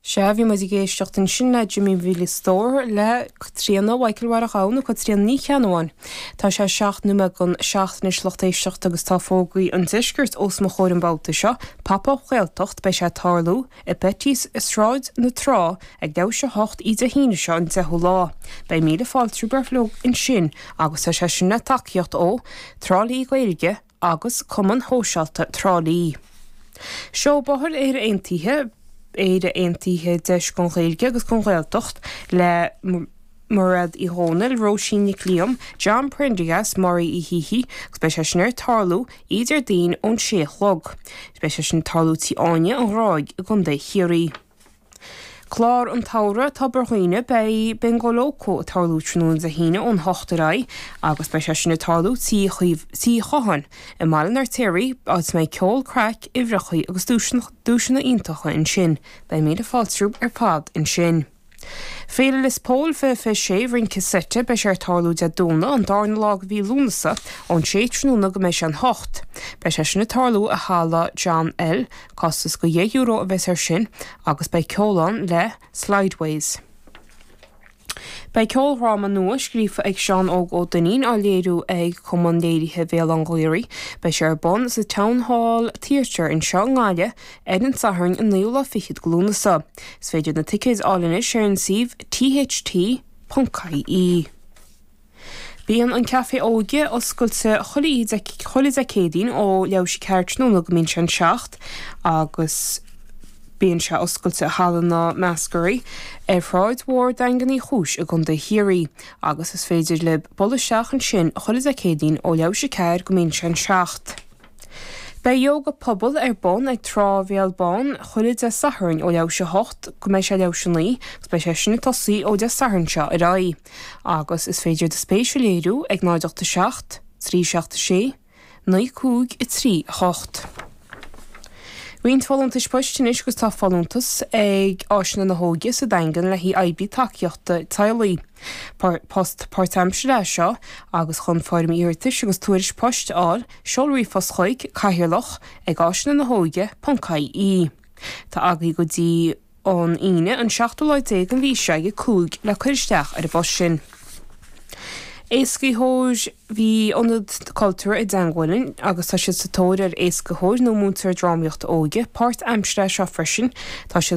Sea, bhí muid ag éisteacht ansin le Jimmy Mhíle Stór, le Caitríona, Mhichael Mháire Ghabha nó Caitríona Ní Cheannabháin. Tá sé seacht nóiméad chun seacht anois, lucht éisteachta, agus tá fógraí an Deiscirt os mo chomhair an babhta seo. Pop Up Gaeltacht, beidh sé ag tarlú i Betty's i Sráid na Trá ag leathuair tar éis a hocht oíche Dé hAoine seo an deichiú lá. Beidh míle fáilte romhaibh uilig ansin, agus tá sé sin le tacaíocht ó Trá Lí Gaeilge, agus Cumann Shóisialta Thrá Lí. Seó Bóthair Éire Aontaithe, Éire Aontaithe, Deis don Ghaeilge agus don Ghaeltacht le Mairéad Uí Dhomhnaill, Róisín Nic Liam, John Prendergast, Mary Uí Shíthigh, agus beidh sé sin ag tarlú oíche Déardaoin ón 6 a chlog. Beidh sé sin ag tarlú Tí Áine, An Ghráig i gContae Chiarraí. Clár an tSamhraidh, Tobar Dhuibhne, Beidh Bingo Lócó ag tarlú tráthnóna Dé hAoine ón hocht ar aghaidh agus beidh sé sin ag tarlú Tí Chatháin i mBaile an Fheirtéaraigh, áit a mbeidh ceol, craic, uimhreachaí agus duaiseanna iontacha ansin. Beidh míle fáilte romhaibh ar fad ansin. Féile Lios Póil, fiche fiche sé, Rince Seite, Beidh sé ag tarlú Dé Domhnaigh, an darna lá de mhí Lúnasa, ón sé tráthnóna go mbeidh sé an hocht. Beidh sé sin ag tarlú i Halla John L. Costas de dheich euro a bheas air sin agus beidh ceol ann le Slideways. Beidh ceoldhráma nua scríofa ag Seán Óg Ó Duinnín á léiriú ag Cumann Léirithe Bhéal Átha an Ghaorthaidh. Beidh sé ar bun sa Town Hall Theatre anseo i nGaillimh ar an tSatharn an naoú lá fichead de Lúnasa. Is féidir na ticéid a fháil anois ar an suíomh tht.ie. Bíonn an Café Óige oscailte chuile Dé Céadaoin ó leathuair tar éis a ceathair tráthnóna go mbíonn sé an seacht agus bíonn sé oscailte i Halla na Meascaraí ar Shráid Mhór Daingean Uí Chúis i gContae Chiarraí agus is féidir libh dul isteach ansin chuile Dé Céadaoin ó leathuair tar éis a ceathair go mbíonn sé an seacht. Beidh Yóga Pobail ar bun ag Trá Bhéal Bán chuile Dé Sathairn ó leathuair tar éis a hocht go mbeidh sé leathuair tar éis a naoi agus beidh sé sin ag tosaí ó Dé Sathairn seo ar aghaidh agus is féidir do spéis a léiriú ag 0 8 7 3 7 6 9 5 3 8. Roinnt folúntais poist anois agus tá folúntas ag Áiseanna na hÓige sa Daingean le haghaidh oibrí tacaíochta teaghlaigh. Post páirtaimseartha é seo agus chun foirm iarratais agus tuairisc poist a fháil, Seol ríomhphost chuig, Cathaoirleach, ag áiseanna na hóige ponc IE. Tá agaibh go dtí an Aoine an seachtú lá déag den mhí seo ag a cúig le cur isteach ar an bpost sin. Éascaitheoir Bhí Ionad Cultúir an tSeanmhuilinn agus tá siad sa tóir ar éascaitheoir nó múinteoir drámaíochta óige páirtaimseartha é seo freisin. Tá siad.